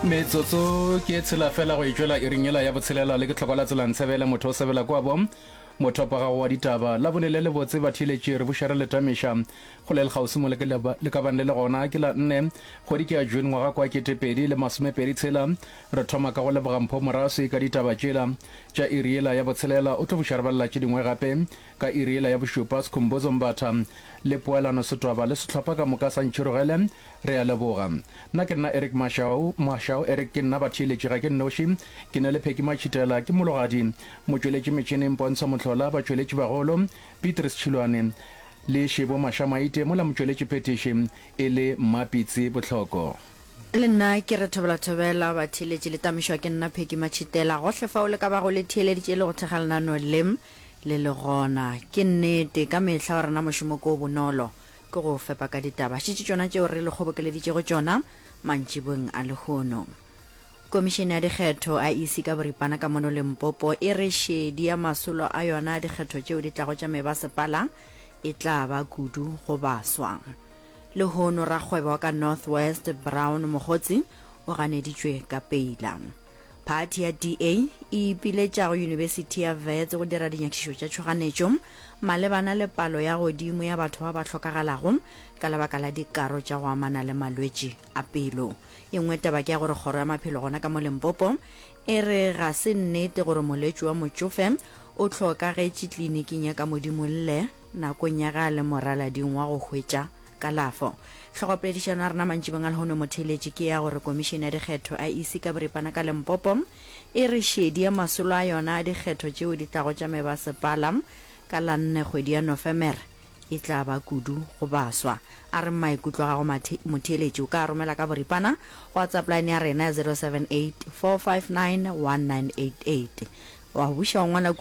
metsotso ke e tshela fela go itšwela e ringela ya botshelela le ke tlhoka la tsela ntshebele motho o sebela kwa bo mothopa gago wa ditaba la bone le le botse ba theletše re bušere le tamiša go le lekgausi mo le ka bang le le gona ke la nne kgwedi ke ya june ngwaga kwa ketepedi le masomepedi tshela re thoma ka go leboga mpho moraswi ka ditaba tšela tša iriela ya botshelela o tlo bušarebalela tše dingwe gape Ka iri yela ya bošupa, Skhumbuzo Mbatha le Poelano Sitwaba le sehlopha ka moka sa Ntšhirogele, re a leboga. Nna ke nna Eric Mashau, Mashau Eric, ke nna batheeletši, ga ke nnoši, ke na le Phecky Matšhitela, ke mologadi, motšweletši metšhineng Pontsho Mohlola, batšweletši bagolo, Beatrice Tšhilwane le Shebo Mashamaite, mola motšweletši phethiši e le Mma Pitsi Bohloko. Le nna ke re thobela thobela, batheeletši le tamišwa ke nna Phecky Matšhitela. Gohle fao le ka bago le theeleditše le go thekga lenaneo le, Le le gona. Ke nnete, ka mehla wa rena mošomo ke o bonolo, ke go o fepa ka ditaba tšitši tšona tšeo re le kgobokeleditšego tšona mantšiboeng a lehono. Komišene ya Dikgetho, IEC, ka boripana ka mono Limpopo e re šedi ya masolo a yona a dikgetho tšeo di tlago tša mebasepala e tla ba kudu go baswa. Lehono, rakgwebo wa ka North West, Brown Mogotsi, o ganeditšwe ka peila. Phathi ya DA e ipiletša go Yunibesithi ya Wits go dira dinyakišišo tša tšhoganetšo malebana le palo ya godimo ya batho ba ba hlokagalago ka lebaka la dikaro tša go amana le malwetši a pelo. E nngwe taba ke ya gore kgoro ya maphelo gona ka mo Limpopo e re ga se nnete gore moletši wa motšofe o hlokagetše tliliniking ya ka Modimolle Nakong ya ga le moralading wa go hwetša kalafo. Hlogopoledišano ya rena mantšibeng a lehono motheeletši ke ya gore Komišene ya Dikgetho, IEC, ka boripana ka Limpopo e re šedie masolo a yona a dikgetho tšeo di tlago tša mebasepala ka la nne kgwedi ya Nofemere e tla ba kudu go baswa. A re maikutlo a gago motheeletši o ka a romela ka boripana go WhatsApp line ya rena ya 0784591988. Wa go buša wa ngwala kua.